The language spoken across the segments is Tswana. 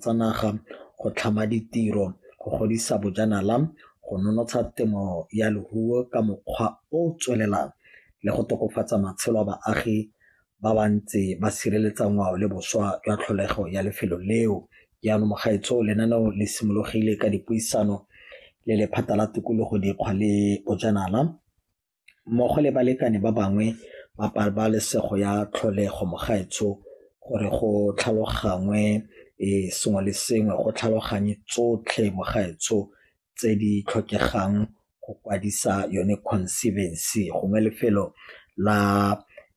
tsa naga, go tlhama ditiro, go godisa bojanala, go nonotsha temo ya leruo ka mokgwa o o tswelelang le go tokafatsa matshelo a baagi ba ba ntse ba sireletsa ngwao le boswa jwa tlholego ya lefelo leo. Jaanong mogaetsho lenaneo le simologile ka dipuisano le lephata la tikologo, dikgwa le bojanala. mmogo le balekane ba bangwe ba pabalesego ya tlholego mogaetsho gore go tlhalogangwe um sengwe le sengwe go tlhaloganye tsotlhe mogaetsho tse di tlhokegang go kwadisa yone conservancy gongwe lefelo la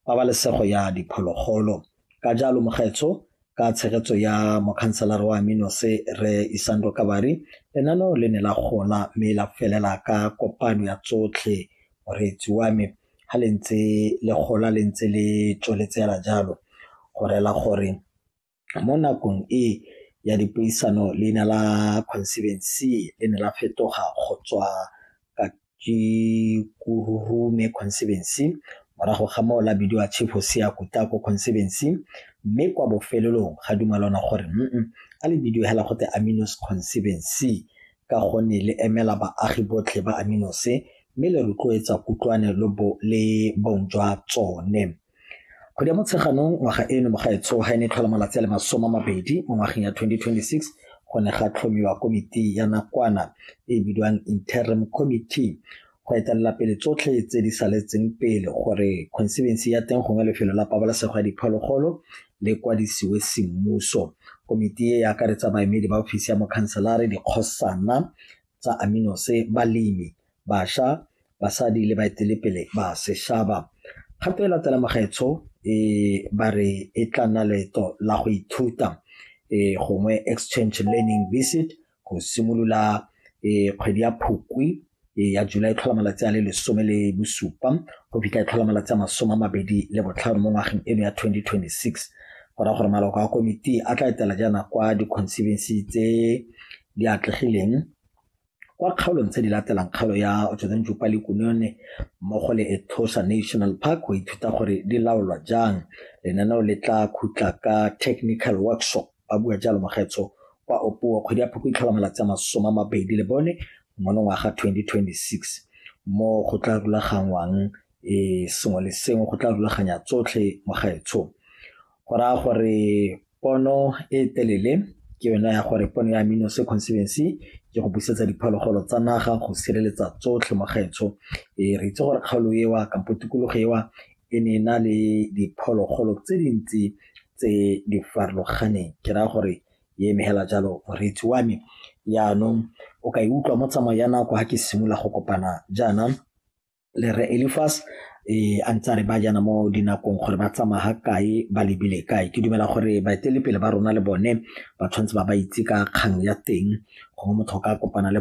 pabalesego ya diphologolo Ka jalo Mokgetsho ka tshegetso ya mokhanselara wa Aminose Rre Isando Kabari, lenaneo le ne la gola mme la felela ka kopano ya tsotlhe moreetsi wa me ha le ntse le gola le ntse le tsweletse hela jalo go rela gore mo nakong e ya dipuisano leina la Conservancy le ne la fetoga go tswa ke Kurume Conservancy morago ga moo la bidiwa Chief Hosea Kutako Conservancy mme kwa bofelelong ga dumalana gore mm a le bidiwe hela go te Aminos Conservancy ka gonne le emela baagi botlhe ba Aminose mme le rotloetsa kutlwane le bong jwa tsone. Kgwedi ya Motsheganong ngwaga eno mo gaetsho ga e ne e tlhola malatsi a le masome a mabedi mo ngwageng ya 2026 go ne ga tlhomiwa komiti ya nakwana e e bidiwang Interim Committee go etelela pele tsotlhe tse di saletseng pele gore khonsebensi ya teng gongwe lefelo la pabalesego ya diphologolo le kwadisiwe semmuso. Komiti e e akaretsa baemedi ba ofisi ya mokhanselare, dikgosana tsa Aminose, balemi, basha, basadi le baetelepele ba seshaba. Kgato e latela magaetsho e ba re e tla nna leeto la go ithuta gongwe exchange learning visit go simolola kgwedi ya Phukwi ya July tlhola malatsi a le lesome le bosupa go fitlha e tlhola malatsi a masome a mabedi le botlhano mo ngwageng eno ya 2026 go raya gore maloko a komiti a tla etela jaana kwa di-conservancy tse di atlegileng kwa kgaolong tse di latelang kgaolo ya Otshozentju Palikunone mmogo le Etosha National Park go ithuta gore di laolwa jang lenaneo le tla khutla ka technical workshop ba bua jalo mogetso kwa opuo kgwedi ya phoko itlhola malatsi a masome a mabedi le bone monongwaga 2026 mo go tla rulaganngwang e sengwe le sengwe go tla rulaganya tsotlhe mo gaetsho go raya gore pono e telele ke yone ya gore pono ya amino se conservancy ke go busetsa diphologolo tsa naga go sireletsa tsotlhe mo gaetsho e re itse gore kgaolo ewa kampo tikologo ewa e ne e na le diphologolo tse dintsi tse di farologaneng ke raya gore e emegela jalo moreetsi wa me yaanong o ka e utlwa mo tsamao ya nako ga ke simolola go kopana jaana le re Elifas e a ntse a re ba jana mo dinakong gore ba tsamaya ga kae ba lebile kae ke dumela gore baetelepele ba rona le bone ba tshwanetse ba ba itse ka kgang ya teng gongwe motho o ka kopana le bone